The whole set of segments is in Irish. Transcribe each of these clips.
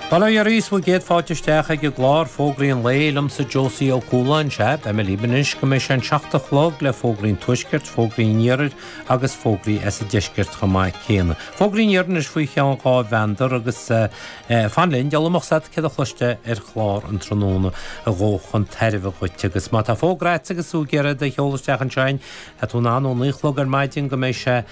Bail ó Dhia oraibh is céad fáilte isteach ag an gclár Fógraí an Lae liomsa Josie Ó Cualáin Is ea, beidh mé libh anois go mbeidh sé an seacht a chlog le Fógraí an Tuaiscirt, Fógraí an Iarthair agus Fógraí as an Deisceart chomh maith céanna. Fógraí an Iarthair anois faoi cheann dhá mheandar agus fan linn, deile a mb'fhios a'd céard a chloisteá ar chlár an tráthnóna a ghabhfadh chun tairbhe dhuit agus má tá fógra a'd agus tú ag iarraidh é a sheoladh isteach ansin tá tú in ann ó naoi chlog ar maidin go mbeidh sé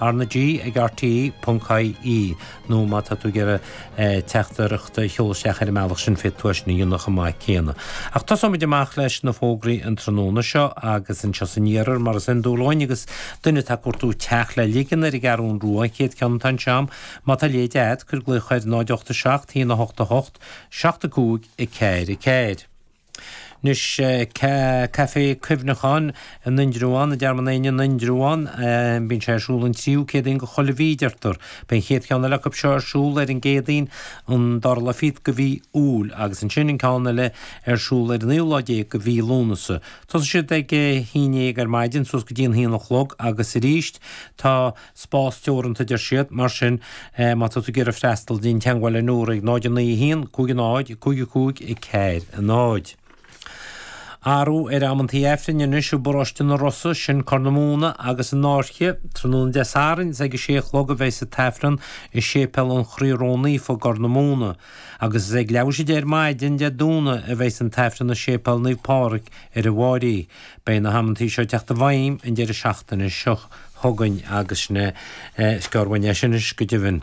RnaG ag RTÉ.ie nó má tá tú ag iarraidh teachtaireacht a sheoladh isteach ar an mbealach sin féadfaidh tú é sin a dhéanamh chomh maith céanna. Ach tosóimid amach leis na fógraí an tráthnóna seo agus anseo san iarthar mar is iondúil linn agus duine atá ag cuartú teach le ligean ar an gCeathrú Rua an chéad ceann atá anseo a'm. Má tá leid a'd, cuir glaoch ar 08 7 1 8 8, 7 5 4 4. Anois, Caifé Cuimhneacháin in Indreabhán, i dTearmann Éanna in Indreabhán. Bíonn sé ar siúl an tríú Céadaoin de chuile mhí, deirtear. Beidh an chéad cheann eile acu seo ar siúl ar an gCéadaoin, an dara lá fichead de mhí Iúil, agus ansin an ceann eile ar siúl ar an naoú lá déag de mhí Lúnasa. Tosaíonn siad ag a haon dhéag ar maidin suas go dtí an haon a chlog agus arís. Tá. Spás teoranta, a deir siad, mar sin má tá tú ag iarraidh freastal, déan teagmháil le Nóra ag 0 9 1 5 0 5 5 4 0. Athrú ar amantaí Aifrinn anois i bParóiste an Rosa, sin Corr na Móna agus an Fhairche. Tráthnóna Dé Sathairn is ag a sé a chlog a bheas an tAifreann i Séipéal an Chroí Ró-Naofa i gCorr na Móna. Agus is ag leathuair th'éis a deich ar maidin Dé Domhnaigh a bheas an tAifreann i Séipéal Naomh Pádraig ar an bhFairche. Beidh na hamantaí seo ag teacht i bhfeidhm an deireadh seachtaine seo chugainn agus sin é an scéal uaidh anois, go deimhin.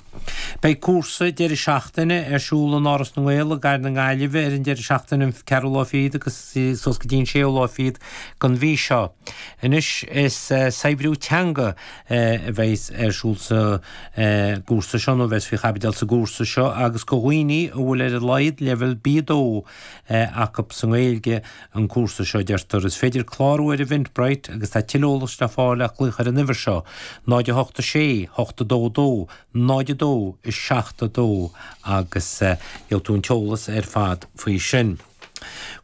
Beidh cúrsa deireadh seachtaine ar siúl in Áras na nGael i gcathair na Gaillimhe ar an deireadh seachtaine an 4ú lá fichead agus suas go dtí an 6ú lá fichead den mhí seo. Anois is saibhriú teanga a bheas ar siúl sa gcúrsa seo, nó a bheas faoi chaibidil sa gcúrsa seo, agus do dhaoine a bhfuil ar a laghad leibhéal B2, acu sa nGaeilge an cúrsa seo, deirtear. Is féidir clárú ar Eventbrite agus tá tuilleadh eolais le fáil le glaoch ar an uimhir seo, 086 822 02 72 agus gheobhaidh tú an t-eolas ar fad faoi sin.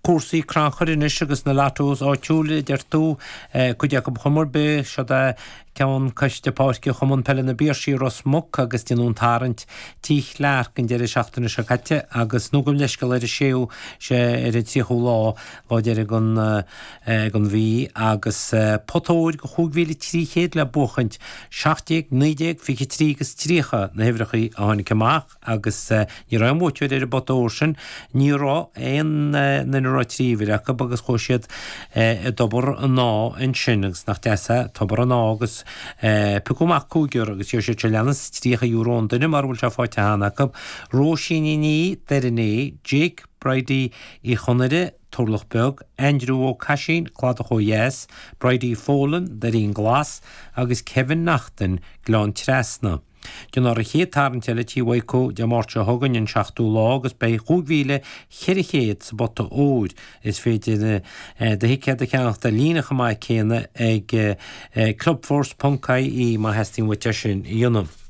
Cúrsaí crannchuir anois agus na Lottos áitiúla, a deir tú. Cuid acu ar chuma ar bith, seod é. Ceann Coiste Páirce Chumann Peile na bPiarsaigh, Ros Muc agus déanadh an tarraingt tí Chlearc an deireadh seachtaine seo caite agus nó gabh leithscéal ar an 6ú sé ar an 30ú lá lá deiridh an ag an mhí agus pota óir de 5300 le buachaint, 17, 19, 23 agus 30 na huimhreacha a tháinig amach. agus ní raibh aon bhuaiteoir ar an bpota óir sin, ní raibh aon duine a raibh trí uimhir acu agus chuaigh siad i dTobar an Áidh ansin agus nach deas é, Tobar an Áidh agus piocadh amach cúigear agus gheobhaidh siad seo leanas, €30 an duine, mara bhfuil sé faighte cheana acu, Róisín Ní Dhoirné, Jake Bridie Uí Chonaire, Turlach Beag, Aindriú Ó Caisín, Cladach Ó Dheas, Bridie Folan, Doirín Glas, agus Kevin Naughton, Gleann Trasna. Déanfar an chéad tarraingt eile tigh Mhaidhceo, Dé Máirt seo chugainn an seachtú lá agus beidh 5,400 sa bpota óir. Is féidir do thicéad a cheannach ar líne chomh maith céanna ag clubforce.ie má theastaíonn uait é sin a dhéanamh.